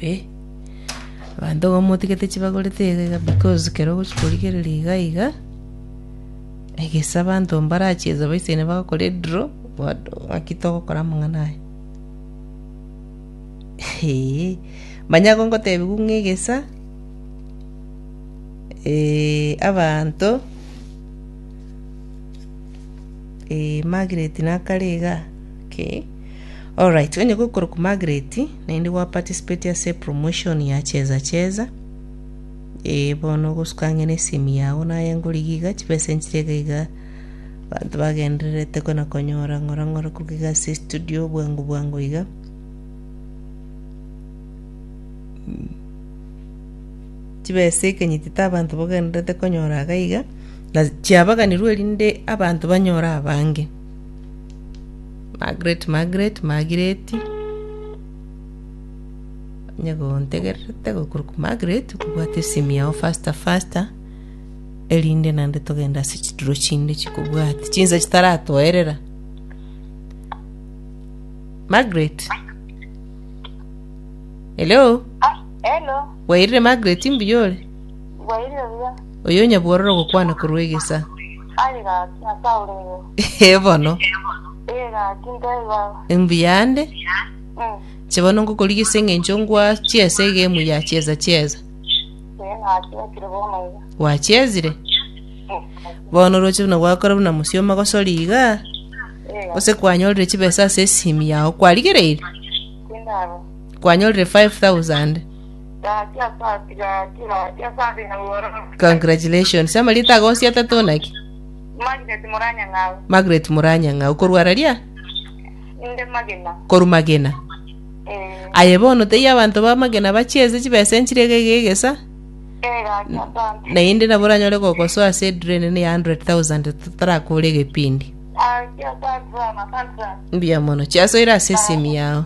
Eeh abanto iga motigete chibagorete iga iga because kero ogochia korigereria iga iga, egese abanto mbarachie ense baisaine bagokora edraw, what ng'aki togokora amang'ana aya eeh. Manya igo ngotebiwu ng'a egesa abanto Margaret nakare igaa kei. Alright, onye gokorokwa Margaret, naende gwa participate ase promotion ya cheza cheza. Ee, bono ogosuka ang'e na esimi yao naye ngorigi iga, chibesa nchiria iga iga. Abanto bagendererete kona konyora ng'ora ng'ora koruga iga ase estudio bwango bwango iga. chibesa ekenyitete abanto bagendererete konyora iga iga, na chiabaganirwe erinde abanto banyore abange. Margaret Margaret Magireti, onye gontegererete gokorwa kwa Margaret okobwate esimi yao faster faster, erinde naende togende ase chituro chinde chikobwati chinsa chitaratoerera. Margaret? Hello? Ah, hello. Bwairire Margaret mbuya ore? Bwairire buya. Oyo onyabuororo gokwana korwa egesa. Aye gaki, ase aurere. Ee bono. Ee gaki, ntebie baba. Mbuya nde. Mm. Inche bono ngokorigia ase eng'encho ngwa chiesa egemu ya chiesa chiesa. Ee nachesire bono iga. Gwachesire? Mm. Bono oroche buna gwakora buna mosioma gosori iga, Ee gose kwanyorire chibesa ase esimi yao. Kwarigereire? tindaro. Kwanyorire 5000. Congratulations. Ama rita ago osiete tu naki? Magnet Muranya Ng'au. Margaret Muranya ng'au. Korwa raria? Inde magina. Koru magena. Eh, Aye bono tei abanto ba magena bachiese chibesa enchire iga iga egesa. eh, gaki asante. Naende nabo oranyore gogosoa ase edure enene ya 100,000 totarakore egepindi. Gaki asante sana, asante sana. Mbuya mono. Chiasoire ase esimi yao.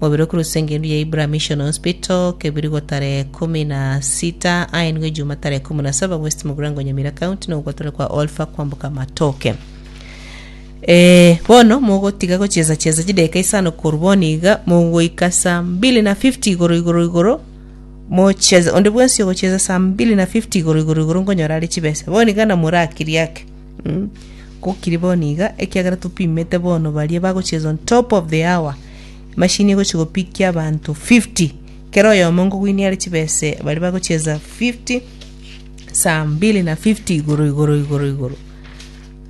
Mobere okoruswa engendu ya Ibra Mission Hospital, Kebirigo tarehe ikomi na sita, aenigwe Ejuma tarehe ikomi na saba West Mugirango Nyamira County na ogotore kwa Olfa kwamboka amatoke. Eh, bono mogotiga gocheza cheza chideka isano koru bono iga mogoika saa mbili na 50 igoro igoro igoro mocheze onde bwensi ogocheza saa mbili na 50 igoro igoro igoro ngonyora ari chibesa bono iga na morakiri ake mm. gokiri bono iga ekiagera topimete bono baria bagocheza on top of the hour Emashini egochia gopikia abanto 50. Kera oyomo ngogwinia are chibesa baria bagochiesa 50, saa mbili na 50 igoro igoro igoro igoro.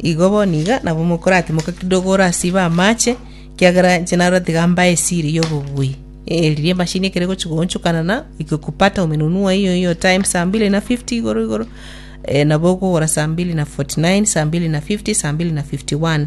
Igo bono iga nabo mokoratimoka kidogo orasibe amache, kiagera inche narora tiga mbae esiri ya obobui. Eh, riria emashini ekero egochia goonchokana na ikikupata umenunua hiyo hiyo time saa mbili na 50 igoro igoro, eh, nabo okogora saa mbili na 49, saa mbili na 50, saa mbili na 51.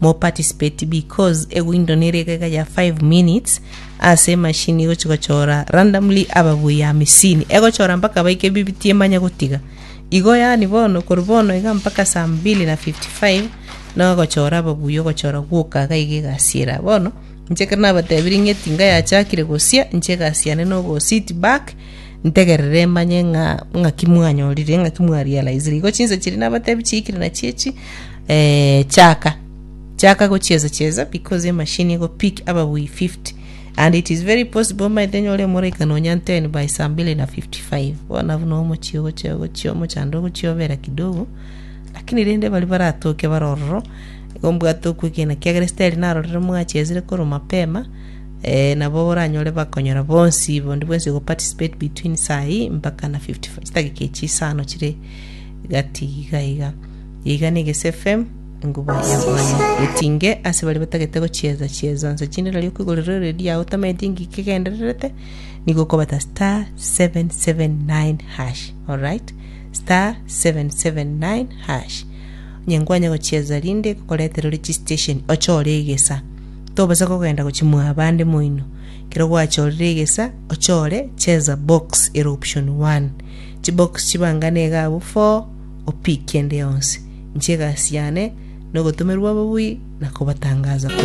Mo participate because eguindo nere egega ya five minutes ase emashini egochi gochora randomly ababuyi hamisini. Egochora mpaka baike bibiti emanye gotiga. Igo yani bono kori bono iga mpaka saa mbili na 55 nogochora ababuyi ogochora gwoka iga iga egasiera. Bono inche ekero nabatebirie ng'eti iga yachakire gosia inche egasi yane nogo sit back Ntegerere manye ng'a ng'aki mwanyorire, ng'aki mwarealize. Igo chinsa chiria nabatebi chiikire nachio echi, eh, chaka, chaka gochiesa chiesa because emachine ego pick ababui 50 and it is very possible omaete nyore emoraika nonya 10 by saa mbili na 55. Bono buna omochie ogochia ogochia omochando ogochia obera kidogo, lakini rende baria baratoke bare ororo, igo mbwate okwegena kiagera esiteri narorire mwachiesire korwa mapema, Ee, nabo oranyore bakonyora bonsi bondi bwensi go participate between saa eye mpaka na 55 chidagika echi isano chire gati iga iga. Iga ni Gese FM enguba ya Bwana. Etinge ase bari batagete gochieza chiezo nse chinde nari okwigorera redio yao otamaeti engiki egendererete nigo okobata star 779 hash. Alright? Star 779 hash. Onye nkwanya gochieza rinde gokoretera ore chi station ochore egesa. Tobasa kogenda gochimwa abande moino. Ekero gwachorire egesa, ochore cheza box ere option one. Chibox chibangane iga abwo four, opick ende yonsi. Inche egasi yane nogotomerwa ababui na kobatangaza korwa.